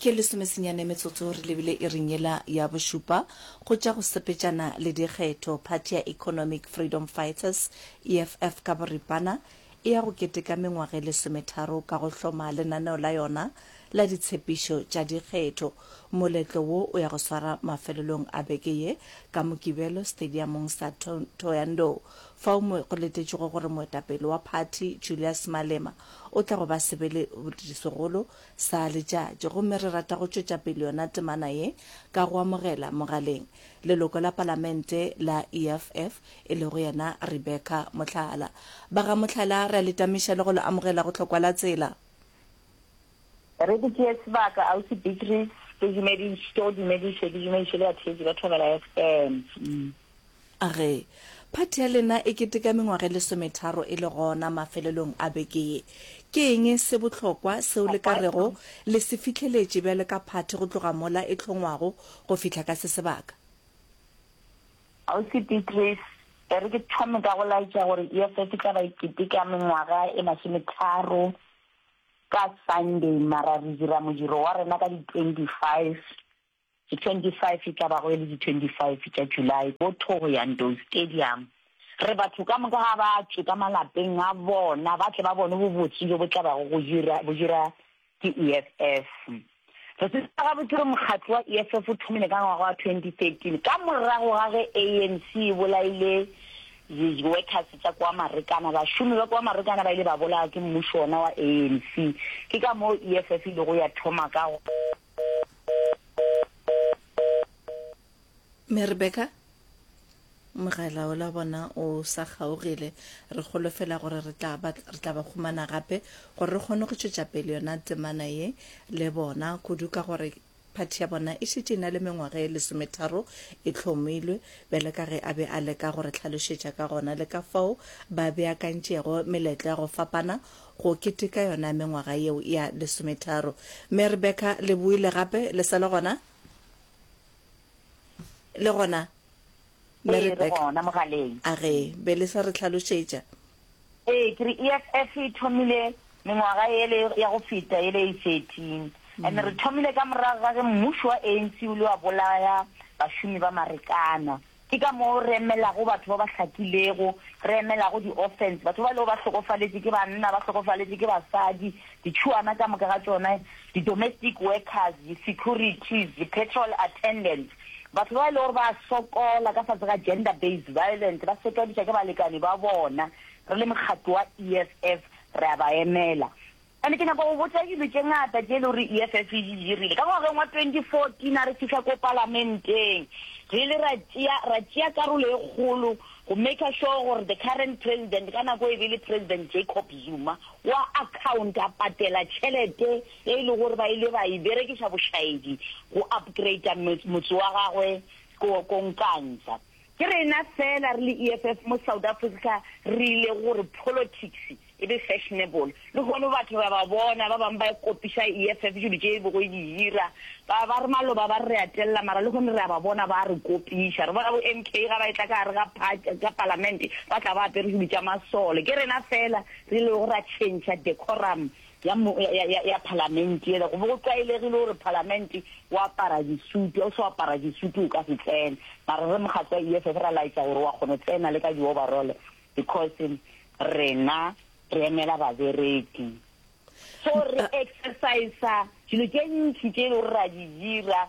Ke lesomesenyane metsotso re lebile iring yela ya bošupa go tša go sepetšana le dikgetho. Phathi ya Economic Freedom Fighters, EFF ka boripana, e ya go keteka mengwaga e lesometharo ka go hloma lenaneo la yona la ditshepišo tša dikgetho. Moletlo wo o ya go swara mafelelong a beke ye ka Mokibelo stadiamong sa Thohoyandou, fao mo go letetšwego gore moetapele wa phathi Julius Malema, O tla go ba sebele segolo sa letšatši, gomme re rata go tšwetša pele yona temana ye ka go amogela mogaleng leloko la Palamente la EFF, e lego yena Rebecca Mohlala. Ba ga Mohlala, re a le tamiša le go le amogela go Hlokwa la Tsela. Re go tšee sebaka, Ausi Beatrice. Ke dumediše, ke o dumediše, ke dumediše le batheetši ba Thobela FM. A re, Phathi ya lena e keteka mengwaga e lesometharo e le gona mafelelong a beke ye. Ke eng se bohlokwa seo le ka rego le se fihleletše bjalo ka phathi go tloga mola e hlongwago go fihla ka se sebaka? Ausi Beatrice, E re ke thome ka go laetša gore EFF e tla ba e keteka mengwaga e masometharo ka Sunday, mara re dira modiro wa rena ka di 25. Ke 25 e tla bago e le di 25 tša July ko Thohoyandou Stadium. Re batho ka moka ga ba tšwe ka malapeng a bona ba tle ba bone bobotse bjo bo tla bago go dira bo dira ke EFF. Re tseba gabotse gore mokgatlo wa EFF o thomile ka ngwaga wa 2013 ka morago ga ge ANC e bolaile di workers tša kwa Marekana, bašomi ba kwa Marekana ba ile ba bolawa ke mmušo wona wa ANC. Ke ka moo EFF e ilego ya thoma ka. me rebeka mogala o la bona o sa kgaogile re golofela gore re tla ba re tla ba khumana gape gore re kgone go tšwetša pele yona temana ye le bona kudu ka gore phathi ya bona e šetše e na le mengwaga e lesometharo e hlomilwe bjale ka ge a be a leka gore tlhalošetša ka gona le ka fao ba beakantšego meletlo ya go fapana go keteka yona mengwaga yeo ya lesometharo. Mme Rebekah le boile gape, le sa le gona? Le gona? Mme Ee, re Rebekah, gona mogaleng. a re be le sa re tlhalošetša? Ee, ke re EFF e thomile mengwaga ele ya go feta ele e 13. And re thomile ka morago ga ge mmušo wa ANC o ile wa bolaya bašomi ba Marekana. Ke ka moo re emelago batho ba ba hlakilego, re emelago di-orphans, batho ba e lego ba hlokofaletše ke banna, ba hlokofaletše ke basadi, ditšhuana ka moka ga tšona, di-domestic workers, di-securities, di-petrol attendants, batho ba e lego gore ba a sokola ka fase ga gender based violence, ba setwadišwa ke balekane ba bona. Re le mokgatlo wa EFF re a ba emela. And ke nyaka go botša dilo tše ngata tše e lego gore EFF e di dirile. Ka ngwageng wa 2014 a re fihla ko palamenteng, re ile ra tšea, ra tšea karolo e kgolo go maker sure gore the current president, ka nako e be e le President Jacob Zuma, o a accounta, patela tšhelete e e lego gore ba ile ba e berekiša bošaedi go upgrader motse wa gagwe ko, ko Nkandla. Ke rena fela re le EFF mo South Africa re ile go re politics e be fashionable. Lehono batho re a ba bona, ba bang ba kopiša EFF dilo tše e bego e di dira. Ba ba re maloba ba re re a telela mara lehono re a ba bona ba a re kopiša. Re bona bo MK ga ba etla ka gare ga part, ga palamente ba tla ba apere dilo tša masole. Ke rena fela re ilego ra tšhentšha decorum ya, ya, ya, ya Palamente yela, go be go tlwaelegile gore Palamente o apara disutu, ga o se apara disutu o ka se tsene, mara re mokgatlo wa EFF ra laetša gore wa kgona tsena le ka di-overall because rena re emela babereki. So re exercisa dilo tše ntši tše e le gore ra di dira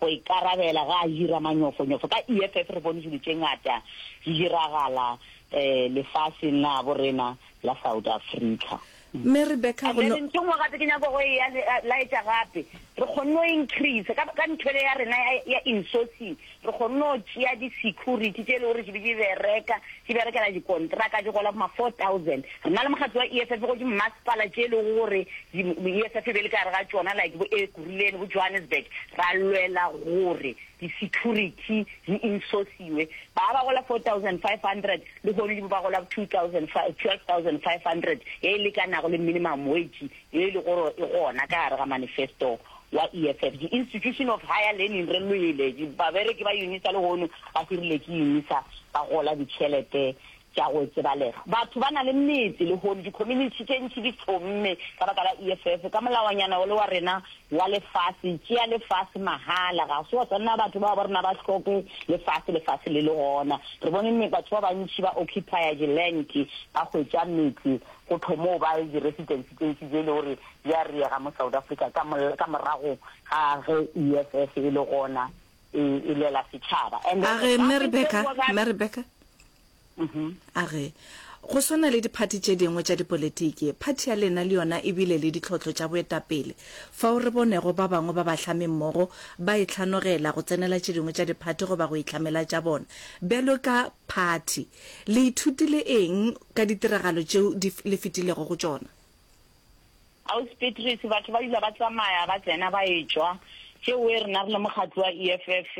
Go ikarabela ga Ahira manyofonyofo ka EFF re bone dilo tše ngata di diragala lefaseng la bo rena la South Africa. Mme Rebecca And go then no. ntho e nngwe gape ke nyaka go e ya le- laetša gape, re kgonne go increase ka, ka ntho ele ya rena ya, ya insourcing, re kgonne go tšea di-security tše e le gore di be di bereka, di berekela dikontraka, di gola bo ma four thousand. Nna le mokgatlo wa EFF go dimasepala tše e lego gore EFF e be le ka gare ga tšona like bo Ekurhuleni, bo Johannesburg, ra lwela gore di-security di insosiwe. Ba ba gola 4500 lehono di bo ba gola 12500 ye e lekanago le minimum wage ye e lego gore e gona ka gare ga manifesto wa EFF. Di-institution of higher learning re lwele, babereki ba UNISA lehono ba hirile ke UNISA ba gola ditšhelete Tša go tsebalega, Batho ba na le metse, lehono dikhominitšhi tše ntši di thommme ka baka la EFF. Ka molaonyana wo le wa rena wa lefase, tšea lefase mahala. Ga se wa swanela batho bao ba rena ba hloke lefase, lefase le le gona. Re bone me batho ba bantši ba occupya dilanki, ba hwetša metse, go thommoo ba le di-residency tše ntši tše e lego gore di a riega mo South Africa ka, ka morago ga ge EFF e le gona. e, e lwela setšhaba And then a re the mme government rebeka said, "Well, mme rebeka Mhm. a re go swana le diphathi tše dingwe tša dipolitiki phathi ya lena le yona e bile le ditlhohlo tša boetapele fao re bonego ba bangwe ba bahlami mmogo ba e tlhanogela go tsenela tše dingwe tša diphathi goba go itlhamela tša bona bjalo ka phathi le ithutile eng ka ditiragalo tšeo di f- le fetilego go tšona Ausi Petrus, batho ba dula ba tsamaya ba tsena ba etšwa, tše oe rena re le mokgatlo wa EFF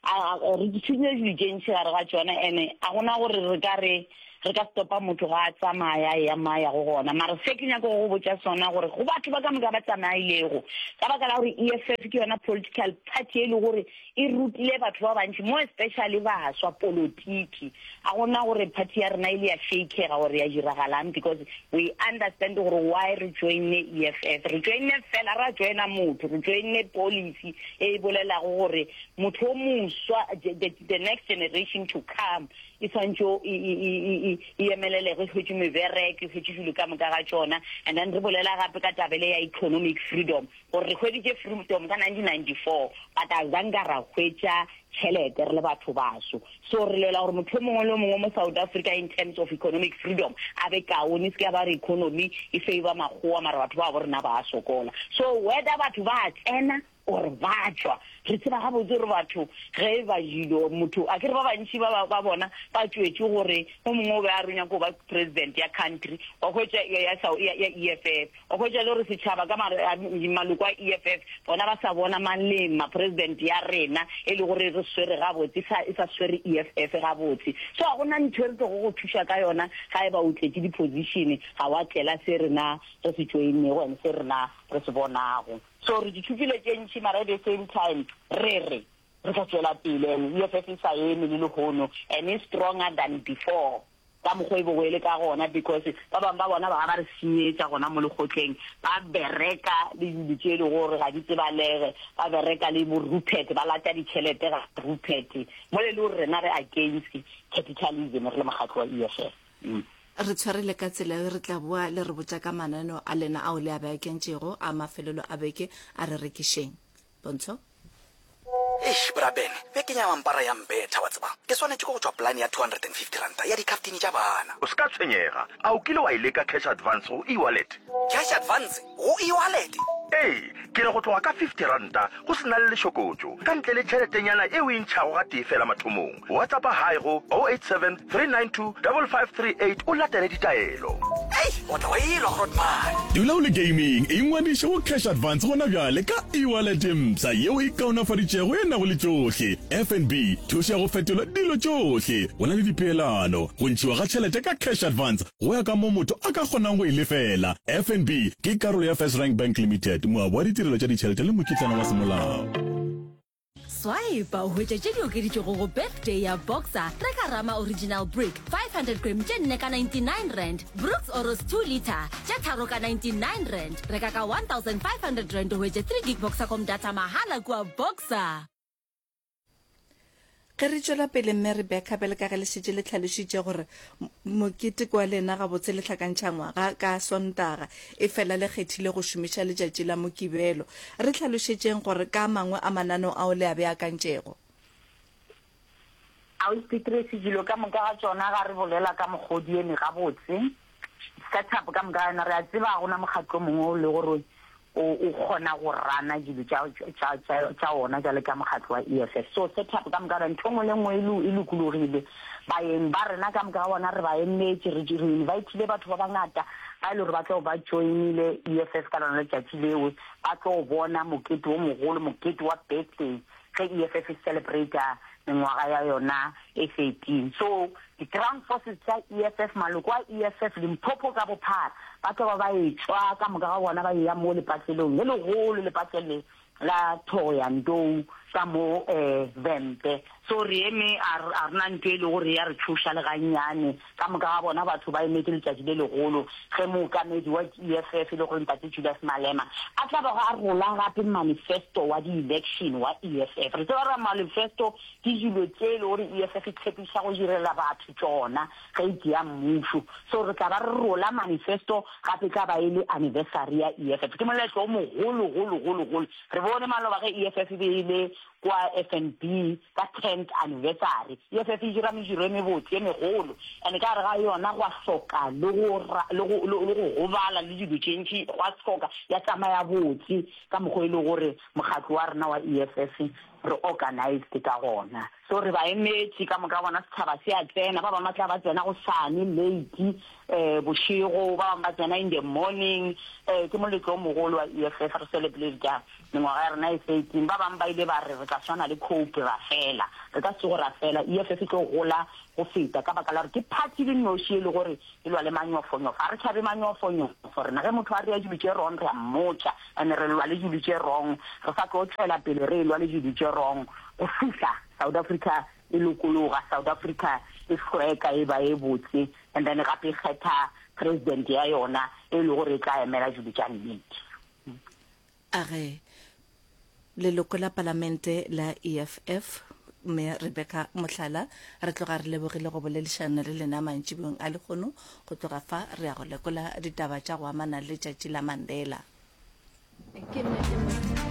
a re tšhudile dilo tše ntši gare ga tšona and a go na gore re ka re re ka stopa motho ga a tsamaya a eya mo a yago gona. Mara se ke nyako go go botša sona gore go batho ba ka moka ba tsamailego ka baka la gore EFF ke yona political party e le gore e rutile batho ba bantši mo especially baswa polotiki a gona gore party ya rena e le ya shakega gore ya diragalang because we understand gore why re joine EFF re joine fela ra joina motho re joine policy e e bolelago gore motho o moswa the next generation to come e tshwanetse e, e, e, e emelelego e hwetše mebereke e hwetše dilo ka moka ga tsona and then re bolela gape ka tabele ya economic freedom Gore re hweditše Freedom ka 1994 but a zanka ra hwetša tšhelete re le batho baso. So re lwela gore motho yo mongwe le yo mongwe mo South Africa in terms of economic freedom a be kaone. E se ke ya ba re economy e favour makgowa mara batho babo rena ba a sokola. So whether batho ba a tsena or ba tšwa re tseba gabotse gore batho ge e ba jilo motho a ke re ba bantši ba ba ba bona ba tšwetše gore o mongwe o be a re o nyaka go ba president ya country wa hwetša ya ya ya EFF. O hwetša le gore setšhaba ka maloko a EFF bona ba sa bona mang le eng ma president ya rena e le gore e re swere gabotse sa e sa swere EFF gabotse. So ga gona ntho e re tlogo go thuša ka yona ga e ba o tletše di position ga wa tlela se rena re se joinego and se rena re se bonago. So re di thopile tše ntši mara at the same time re re. Re tla tšwela pele and EFF e sa eme le lehono and e stronger than before ka mokgwa e bego e le ka gona because ba bangwe ba bona ba ga ba re senyetša gona mo lekgotleng ba bereka le dilo tše e lego gore ga di tsebalege ba bereka le bo Rupert ba lata ditšhelete ga Rupert mo le le gore rena re against capitalism re le mokgatlo wa EFF mm. Re tshwere le ka tsela yo re tla boa le re botša ka mananeo a lena ao le a beakentšego a mafelelo a beke a re rekišeng Pontsho. Eish, bra Ben, bekeng ya mampara ya mbetha, wa tseba. Ke swanetše ke go tšwa polane ya two hundred and fifty ranta ya dikhaftini tša bana. O se ka tshwenyega. A o kile wa e leka cash advance go e-wallet? Cash advance go e-wallet? Ee, ke re go tloga ka fifty ranta go se na le lešokotšo, ka ntle le tšheletenyana e o e ntšhago gatee feela mathomong. Whatsappa hi go 087 392 5538 o latele ditaelo. Hei, o tla wa elwa Grootman. Dula o le gaming, ingwadiše go Cash Advance gona bjale ka e-wallet ye mpsha yeo e kaonafaditšego e nago le tšohle, FNB, thušo ya go fetola dilo tšohle, go na le dipeelano, go ntšhiwa ga tšhelete ka Cash Advance go ya ka moo motho a ka kgonang go e lefela. FNB ke karolo ya First Rank Bank Limited, moabi wa ditirelo tša ditšhelete le mokitlana wa semolao. Swipe o hwetše tše di okeditšwego go Birthday ya Boxer, Trek Arama Original Brick, 500 gram tše nne ka 99 rand, Brooks Oros 2 litre, tše tharo ka 99 rand. Reka ka 1500 rand o hwetše 3 gig Boxercom data mahala kua Boxer. Ge re tšwela pele, Mme Rebecca, bjale ka ge le šetše le hlalošitše gore Mokete kwa lena gabotse lehlakantšha ngwaga ka Sontaga efela le kgethile go šomiša letšatši la Mokibelo. Re hlalošetšeng gore ka mangwe a mananeo ao le a beakantšego. Auspitris dilo ka moka ga tšona ga re bolela ka mogodi eme gabotse setup ka moka ga yona re a tseba ga gona mokgatlo mongwe o le gore O, o kgona go rana dilo tša, tša, tša, tša ona bjalo ka mokgatlo wa EFF. So, setup ka moka, ntho nngwe le nngwe e, lo, e lokologile. Baeng ba rena ka moka ga bona re ba emetše, re, re invitile batho ba bangata ba e le gore ba tlo ba joinile EFF ka lona letšatši leo, ba tlo bona mokete o mogolo, mokete wa birthday. ge EFF e celebrata mengwaga ya yona e 13. So, di ground forces tša EFF, maloko a EFF, Limpopo ka bophara, ba tloba ba etšwa ka moka ga bona ba eya mo lepatlelong le legolo, lepatlele la Thohoyandou ka mo um Vhembe. So, re eme, a re na nto e lego re ya re tšhoša le gannyane. Ka moka ga bona batho ba emetše letšatši le legolo ge mookamedi wa EFF e lego Ntate Julius Malema a tla bago a rola gape manifesto wa di-election wa EFF. Re tseba gore manifesto ke dilo tše e lego gore EFF e tshepiša go direla batho tšona ge e tšea mmušo. So re tla ba re rola manifesto gape e tla ba e le anniversary ya EFF. Ke moletlo o mogolo golo golo golo. Re bone maloba ge EFF e be e le kwa FNB. Ka tenth anniversary ye se se dira mediro e mebotse ye megolo and ka gare ga yona gwa hloka le go le go le go gobala le dilo tše ntši gwa hloka ya tsamaya botse ka mokgwa e le gore mokgatlo wa rena wa EFF re organized ka gona so re ba emetše ka moka bona setšhaba se a tsena ba bangwe ba tla ba tsena go sane late eh bošego ba bangwe ba tsena in the morning eh ke moletlo o mogolo wa EFF re celebrate Mengwaga ya rena e se e teng, ba bangwe ba ile ba re re tla swana le khoupi, ra fela. Re ka se tsoge ra fela. EFF e tlo gola go feta ka baka la gore ke phathi e le noši e le gore e lwa le manyofonyofo. Ga re tšhabe manyofonyofo rena. Ge motho a dira dilo tše wrong, re a mmotša and re lwa le dilo tše wrong. Re sa tlo tšwela pele re elwa le dilo tše wrong go fihla South Africa e lokologa, South Africa e hlweka e ba e botse and then gape e kgetha President ya yona e le gore e tla emela dilo tša nnete. A re leloko la Palamente la EFF, Mme Rebecca Mohlala, re tloga re lebogile go boledišana le lena mantšibong a lekgono. Go tloga fa re ya go lekola ditaba tša go amana le tšatši la Mandela. Ke nnete mo.